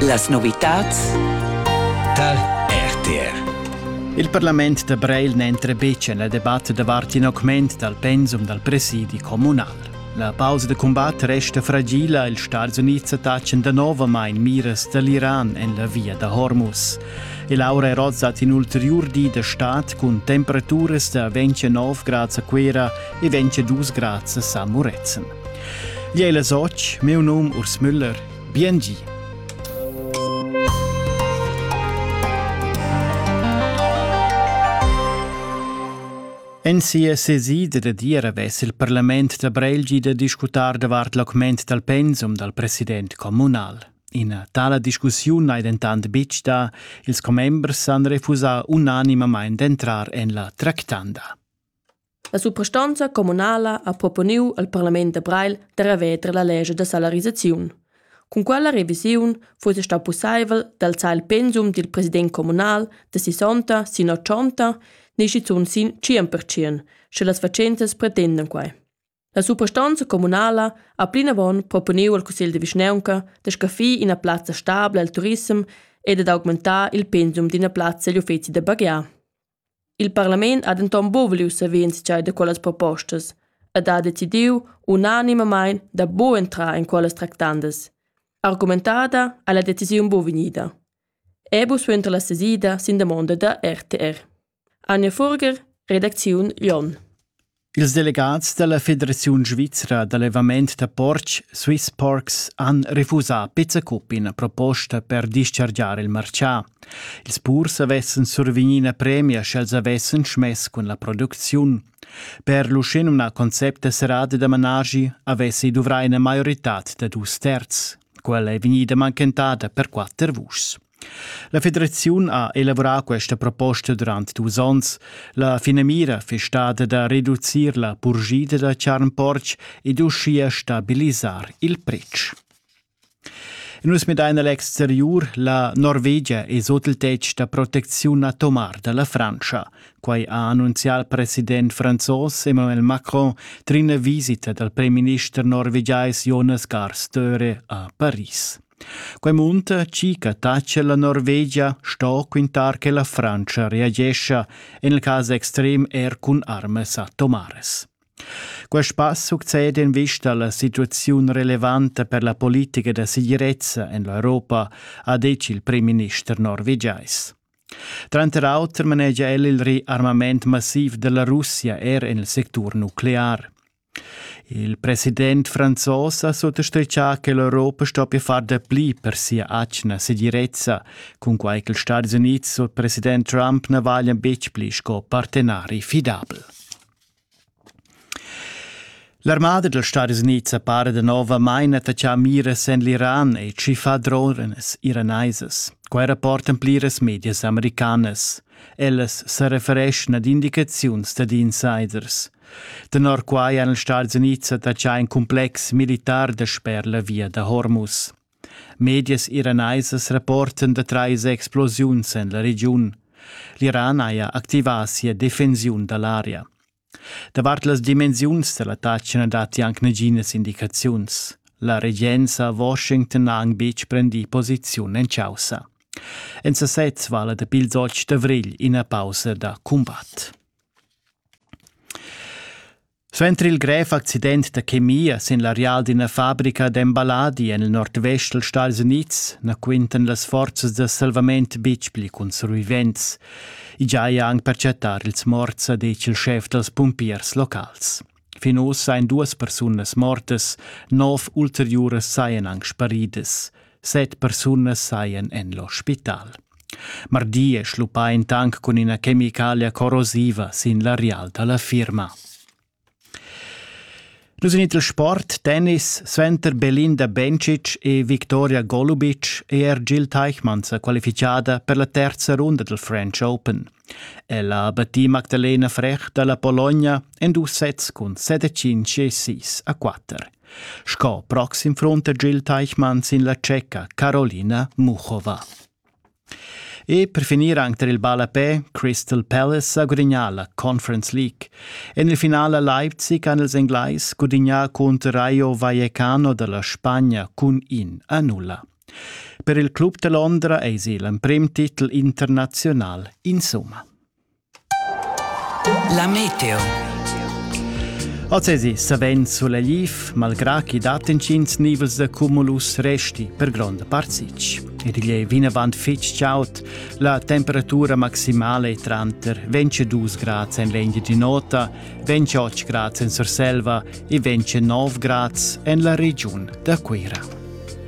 Las novitads tar RTR. Il parlament da Breil n'entra betg en la debatta davart in augment dal pensum dal presidi communal. La pausa da cumbat resta fragila, ils Stats Unids attachan danovamain miras da l'Iran en la via da Hormuz. Il aura rozzat in ulteriur di da stad cun temperaturas da 29 grads a Cuera e 22 grads a San Murezzan. Gliei la soc, miu num Urs Müller. Bien gi. En sia sesida da diera vess il parlament da Brelgi da discutar davart l'augment dal pensum dal president communal. Ina tala discussiun ei dentant betg da, ils commembers han refusà unanimamain d'entrar en la tractanda. La suprastonza communala ha proponiu al parlament da Breil da reveter la lescha da salarisaziun. Cun quella revisiun fuss stau pusseivel d'alzar il pensum dil president communal da sessanta sin ochonta ni schizun sin tschien pertschien, sche las fatschentas pretendan quei. La suprastonza communala ha plinavon proponiu al cussegl de vischnaunca da scaffir ina plazza stabla al turissem e dad augmentar il pensum d'ina plazza egl uffeci da baghiar. Il parlament ha denton buca vuliu saver entscheiver da quellas propostas ed ha decidiu unanimamain da buca entrar en quellas tractandas. Argumentada ha la decisiun buca vegnida. Ebu suenter la sesida sin damonda da RTR. Anja Furger, redacziun Jon. Ils delegats da la Federaziun svizra d'allevament da portg Swiss Porks han refusà pezza cup ina proposta per dischargiar il martgà. Ils purs avessan survegnì ina premia sch'els avessan schmess cun la producziun. Per l'uschenumnà concept da serrada da managi avessi duvrà ina maioritad da dus terz. Quella è vegnida mancantada per quatter vuschs. La federaziun ha elavurà questa proposta durant dus onns. La finamira fiss stada da reducir la purgida da charn-portg ed uschia stabilisar il pretsch. Nus medein l'exteriur la Norvegia e sot il tetg da protecziun atomar dalla Frantscha. Quai ha annunzià il president franzos Emmanuel Macron trin visita dal premierminister norvegiais Jonas Gahr Støre a Paris. Quei munta chi che tacha la Norvegia sto quintar che la Frantscha reagescha, en il cas extrem er cun armas atomares. Quest pass succede in vista alla situazione relevante per la politica da segirezza en l'Europa, ha detto il premier-minister norvegiais. Tranter auter manegia el il riarmament massiv della Russia er en il sectur nuclear. Il president franzos ha suttastritgà che l'Europa stoppia far dapli per sia atgna segirezza, cunquai ch'ils Stadis Unids sut president Trump na valian betg pli sco partenari fidabel. L'armada dals Stadis Unids appara danovamain attaccà miras en l'Iran e tschiffà drones iranaisas. Quai rapportan pliras medias americanas. Ellas sa refereschan ad indicaziuns dad insiders. Tenor quai han els Stats Unids attachà in cumplex militar dasper la via da Hormuz. Medias iranaisas rapportan da trais explosiuns en la regiun. L'Iran haja activà sia defensiun da l'aria. Davart las dimensiuns da l'attacc na datti anc naginas indicaziuns. La regenza a Washington ha anc betg prendì posiziun en chaussa. En sasez vala dapi ils 8 d'avrigl ina pausa da cumbat. Suenter il grev accident da chemia sin l'areal d'ina fabrica d'emballadi en il nordvest dals Stadis Unids na quintan las forzas da salvament betg pli cun survivents. I giaja anc per chattar ils morts, ha detg il schef dals pumpiers locals. Fin ussa ein duas persunas mortas, nov ulteriuras sajan anc sparidas. Set persunas sajan en l'ospital. Mardi è schluppà in tank cun ina chemicalia corrosiva sin l'areal da la firma. Nus in il sport, tennis, suenter Belinda Bencic e Victoria Golubic è er Jill Teichmann sa qualifichada per la terza runda del French Open. Ella ha battì Magdalena Frech da la Pologna en dus sets cun 7 5 e 6 a 4. Sco proxim front da Jill Teichmann sin la tscheca Carolina Muchova. E per finir anche tar il ballapè, Crystal Palace sa gudignà la Conference League. En il finale Leipzig han ils Englais gudignà contro Rayo Vallecano dalla Spagna cun in a nulla. Per il club da Londra eisi l'emprim titel internazional insomma. La meteo. Ozesi savens suleliv, malgrà chi dat intgins nivels da cumulus resti per gronda part sich. Ed igl è vinavant fitg chaud. La temperatura maximale è tranter 22 grads en l'Endia di Nota, 28 grads en Surselva e 29 grads en la regiun da Cuira.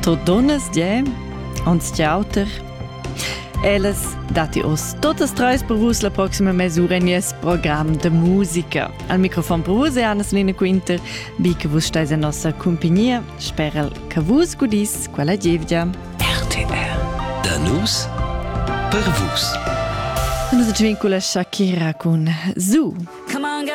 Tot donnas die uns di auter. Ellas datti oz totas treis per vus la proxima mesura in nies program de musica. Al microfon per vus è Anna-Selina Quinter, bi che vus stais en nossa compagnia. Speral che vus gudis quella gievgia. RTR. Da nus per vus. Nus ci vincula Shakira con Su. Come on,